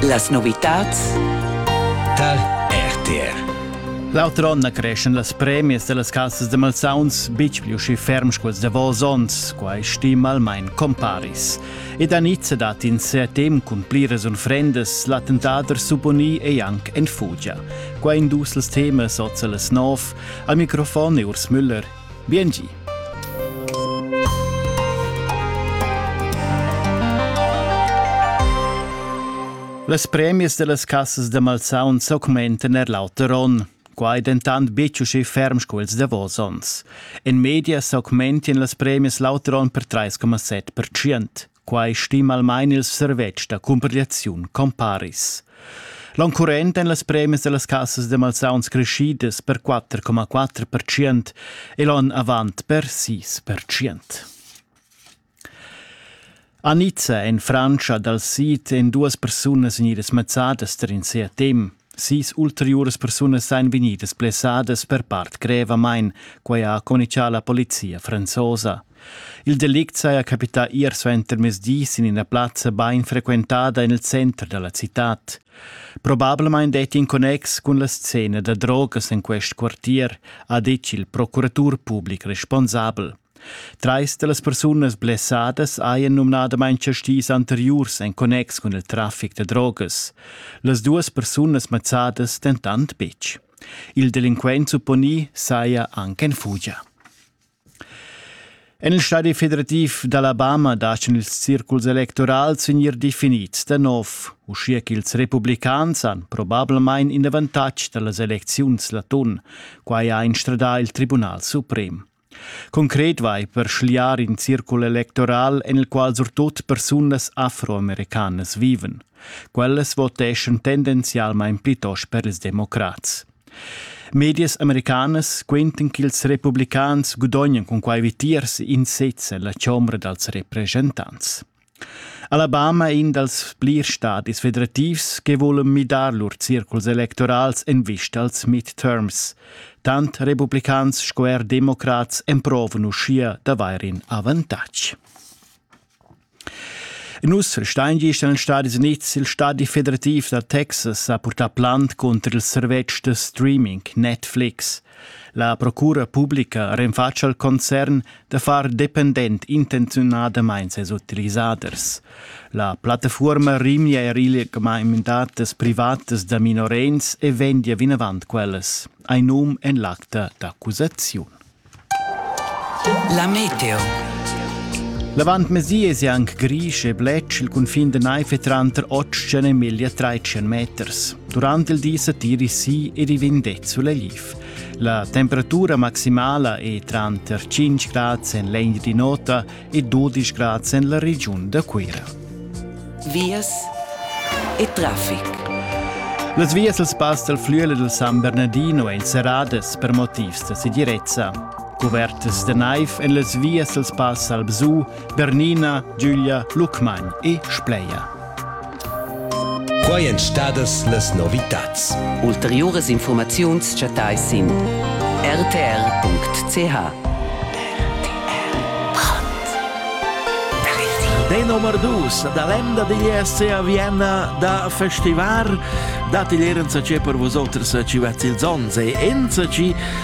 Las novitads tar RTR L'auter onn creschen las premias dellas cassas de malsauns bitg più schi ferm sculs davos onns, quai stima almain comparis. Ed a Nizza dat in setem cun pliras unfrendas l'attentader supponì e anc en fugia. Qua in dus els temas oza las nov, al microfon e Urs Müller, Biengi! Las premias dellas cassas da malsauns s'augmentan er l'auter onn. Quai dentant betg uschè ferm sco ils davos onns. In media s'augmentian las premias l'auter onn per 3,7%. Quai stima almain il servetsch da cumpigliaziun Comparis. L'onn current èn las premias da las cassas da malsauns creschidas per 4,4% e l'onn avant per 6%. A Nizza en Frantscha dal sid èn duas persunas vegnidas mazzadas tar in sia tem. Sis ulteriuras persunas ein vegnidas blessadas per part grevamain, quei ha communicà la polizia franzosa. Il delict saja capità ier suentermezdi sin ina plazza bain frequentada en il center da la citad. Probablamain detti in connex cun la scena da drogas en quest quartier, ha ditg il procuratur public responsabel. Trais da las persunas blessadas hajan numnadamain tschess dis anteriurs en connex cun il traffic da drogas. Las duas persunas mazzadas dentant betg. Il delinquent supponì saja anche en fugia. En il stadi federativ d'Alabama dachen ils circuls electorals vegnir definids da nov, uschia ch'ils republicans han probablamain in avantatg da las elecziuns l'atun. Quai ha instradà il Tribunal suprem. Concret vai per schliar in circul electoral en il qual surtut persunas afroamericanas vivan. Quellas voteschan tendenzialmain plitost per ils democrats. Medias americanas quentan ch'ils republicans gudognan cun quai vitiers in sez en la chombra dals representants. Alabama è in dals plirs stadis federativs che vulan midar lur circuls electorals en vista als midterms. Tant republicans sco er democrats emprovan uschia d'avair in avantatg. Nus steingiest nel Stadi Unids, il Stadi federativ da Texas ha purtà plant cunter il servetsch da streaming Netflix. La procura publica renfatscha il concern da far dependent intenziunadamain ses utilisaders. La plattafuorma rimia er il gemeindatas privatas da minorenns e vendia vinavant quellas. Ein num en l'acta d'accusaziun. La meteo. L'avant mesies è anche grisch e blec il cunfin de naife tranter 8 e media 13 meters. Durant il di setiri si ed i vegn det sulegl. La temperatura maximala è tranter 5 grads en l'Englandi nota e 12 grads en la regiun da Cuira. Vias e traffic. Las vias dal spass dal Flüele del San Bernardino èn serradas per motivs da segirezza. Cuvertas da naiv en las vias dal spass al Bsu Bernina, Giulia, Lucmagn e Spleia. Quai èn stadas las novitads. Ulteriuras informaziuns chattais sin rtr.ch. Deno Mardus, da l'emda digl ESC a Vienna da festivar, dat igl erenza ce per vosoters ci vezz ils ons e enza ci